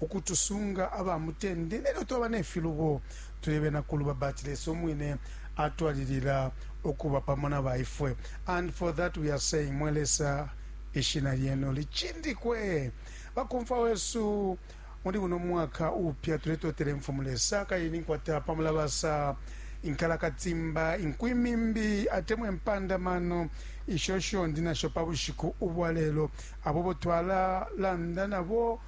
ukutusunga aba mutende nelyo twaba ne filubo, tuli bena kuluba, but Lesa umwine atwalilila ukuba pamo na ba ifwe. And for that we are saying, Mwe Lesa, ishina lyenu licindikwe. Bakomfwa wesu muli buno mwaka upya tuletotela imfumu Lesa kayini nkwata pamulabasa inkalakatimba inkwimimbi atemwe mpandamano isho shondi nasho pa bushiku ubwa lelo abo bo twalalanda nabo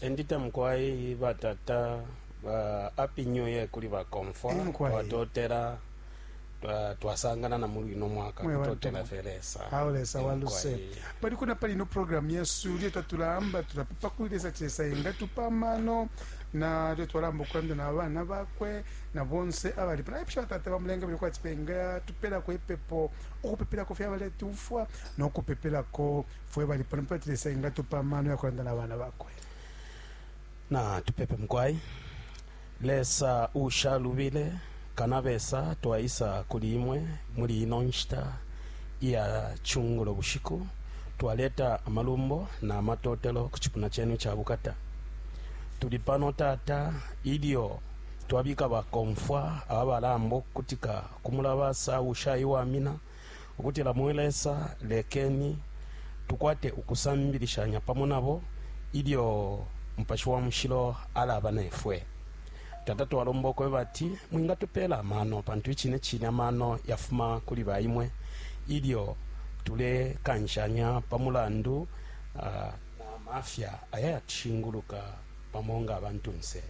Endita mukwai batata ba happy new year kuli bakomfwa Eh, mukwai. twatotela twa- twasangana na muli uno mwaka Mwe bantu. kutotela fye lesa awo lesa Eh, waluse mukwai. pali kuna pali ino programu yesu lyo tatulamba tulapepa kuli lesa chesa engatupa amano na lyo twalamba okulanda na bana bakwe na bonse abali pano aipusha batata bamulenga bili kwati penga tupelako ipepo okupepelako fye abaletumfwa nokupepelako Fwe bali pano pati Lesa engatupa amano ya kulanda na bana bakwe. Na tupepe mukwai. Lesa ushalubile kanabesa twaisa kuli imwe muli ino nshita iya cungulo bushiku twaleta amalumbo na matotelo ku cipuna cenu ca bukata tuli pano tata ilyo twabika bakomfwa abalamba okukutika ku mulabasa ushaiwamina ukutila, Mwe Lesa, lekeni tukwate ukusambilishanya pamo nabo ilyo Mupashi wa Mushilo alaba ne fwe. Tata, twalomba ukweba ati Mwingatupela amano, pantu icine cine amano yafuma kuli ba Imwe, ilyo tulekanshanya pa mulandu na mafya aya yatushinguluka. pamo nga abantunse.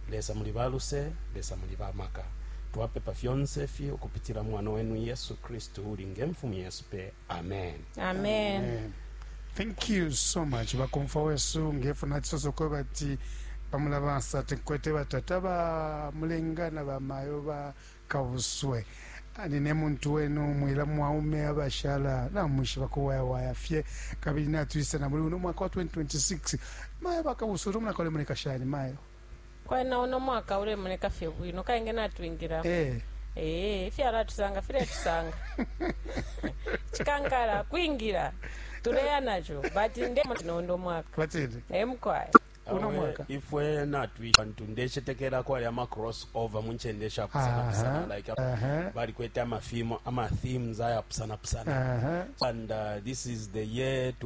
Lesa muli ba luse, Lesa muli ba maka. Twapepa fyonse ifi ukupitila mwana wenu Yesu Kristu uli nge mfumu yesu pe. Amen. Amen. Amen. Thank you so much bakomfa wesu ngefu nachisoso kwa bati pamulabasa tinkwete batata ba mulenga na bamayo ba kabuswe nine muntu wenu mwila mwaume abashala namwishiba kuwayawaya fye kabili natwisa na muli uno mwaka wa 2026 mayo bakabuswe uno mwaka ulemoneka shani mayo kwena uno mwaka ulemoneka fye bwino kainge natwingila eh ee ifyalo atusanga filetusanga chikankala kwingila tuleya nacho but ndemo tinondo mwaka batini emkwaya uno mwaka Awe, ifwe natwisha ntu ndecetekela kwali ama cross over mu ncende shapusana Aha, pusana like aha. balikwete amafilmu ama themes ayapusana pusana Aha. and uh, this is the year to